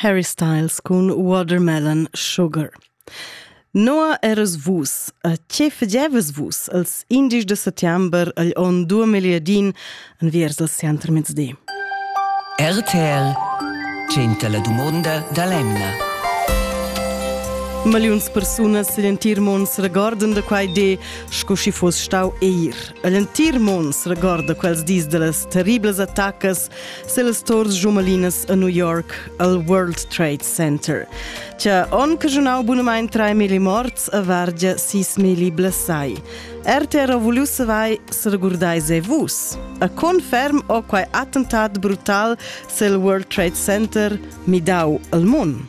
Harry Styles cun Watermelon Sugar. Noa eras vus, a che fagevas vus als indies de settembre agl on 2010 enviers al Center Mezdi? RTL 100 la dumonda da l'emna. Maliuns persunas l'entir mond se regordan de quai de, sco si foss stau eir. L'entir mond se regorda quels dis de las terribles attacas selas tors jumalinas a New York al World Trade Center. C'è on che giornal bunamain 3.000 morts a Vargia 6.000 blessai. RTR vulius vai se regurdai se vus. A conferm o quai attentat brutal sel World Trade Center midau al mun.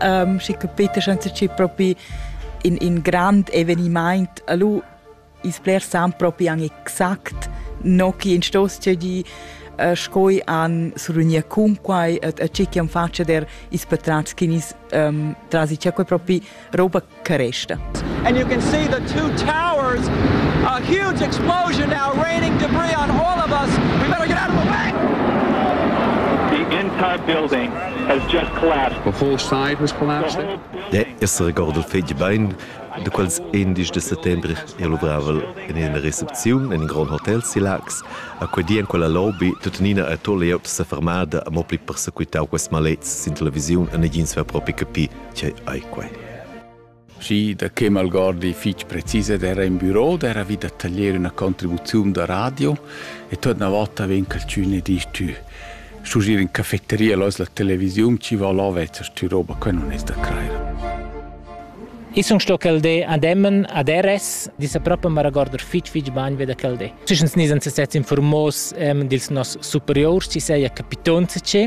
um, schi capita senza chi propi in, in grand evenimaint alu is blers san propi an exact no chi in stos di uh, scoi an surunia cunquai et a chi chi am faccia der is patrats chinis um, trasi c'è quei propi roba Caresta. And you can see the two towers, a huge explosion now raining debris on all of us. We better get out of the way! The entire building has just collapsed. The whole side was collapsed. De essere ricordo fetg bein, de quels 11 de settembre è luvravel in ina recepziun in in grand hotel Silax. A quei di en quella lobby tuttenina a to layout sa fermada a mo pli persequitau quest malets sin televisiun e negins va propi capi Tgei ei quei? Schi, da che malgordi fich precis ed era in büro d'era vi da taglier üna contribuziun da radio e tuot na vota vegn calchün e disch tü schugier in cafetteria lois la televisiun chi va là vezzas tü roba que non es da crair. Ich sun sto quel de ademmen ad RS, disa proprio ma regorder fitch fitch bagn ve da quel de. Schischens nis ans sets informos ähm, dils nos superiors, ci seia capitonze ce,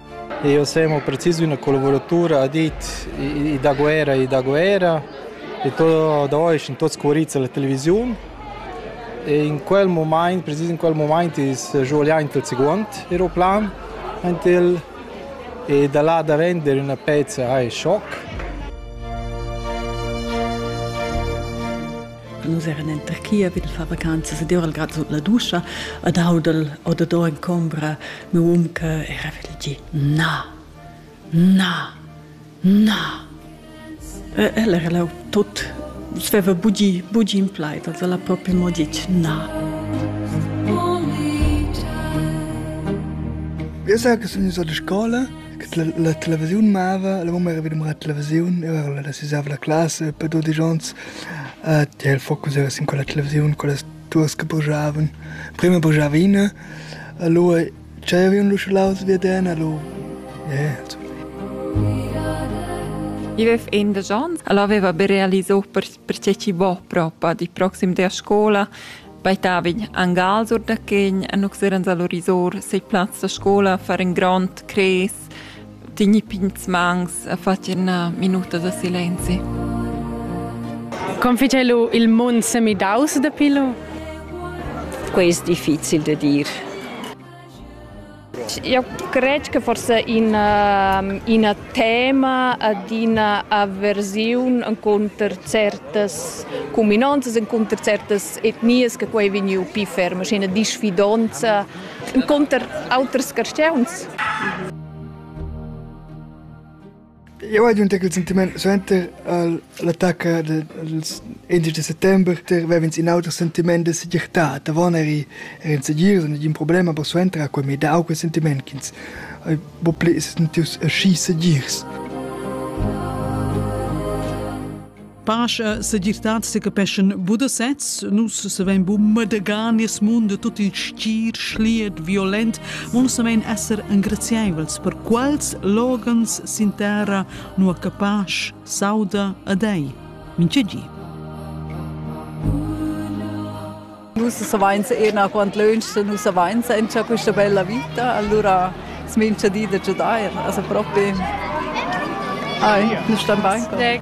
Jeu sem mo precis üna collavuratura ha dit i da guerra e da guerra e tot da ois in tot scuorizza la televisiun e in quel mumaint precis in quel mumaint is svuliaint il seguond aeroplan ant el e da là da vender üna pezza hai schoc. Nus eran en Turchia vid far vacanzas ed ora grad sut la duscha ed audel odador en combra meu um che era vid il gi na, na, na. E el era là tot, nus veva bugi, bugi in plaid, also la proprio mo ditg na. Eu sa che sun so da scola che la, la televisiun mava, la mumma era vidum la televisiun, eu ero la sisava la classe per 12 ans Tiel focus era sin quella televisiun, quellas duas che bujavan. Prima bujava ina, e lu tscheiva ün lu schulaus vi ed en e lu yeah, I avev indesch ons, el aveva be realisò per, perche chi vo propa di proxim dea scola, baitavin angal sur da chegn e nux eran salorisor sei plaz da scola far in grond cres Tegni pigns mangs e fatgi ina minuta da silenzi. Confice lu il mund semidaus dapi lu? Quei è difficil da dir. Eu cred che forse in, uh, in tema ad una avversione contro certe cuminanze, contro certe etnie che quei vegniu più fermo, c'è una disfidanza encunter auters carstgauns? Eu hai giunta quel sentiment suenter l'attacca dels indici de settembre ter vev'ins in auter sentiment de segirtad. Avon eri er in segir, nagin problema per suenter a quei mi dau quel sentiment ch'ins hai bo pli sentiu aschi segirs. Pasch e segirtad secapeschan bu da sez. Nus savein bu madegar nies mund tut il stir, schliet, violent. Mo savein esser engraziaivels per quals loghens sin terra nua che pasch sauda a dei. Minche gi. Nus savains ena quant lönch, nus savains encha questa bella vita, allura smincha di da giudair, also propi. Ai, nus stan bain.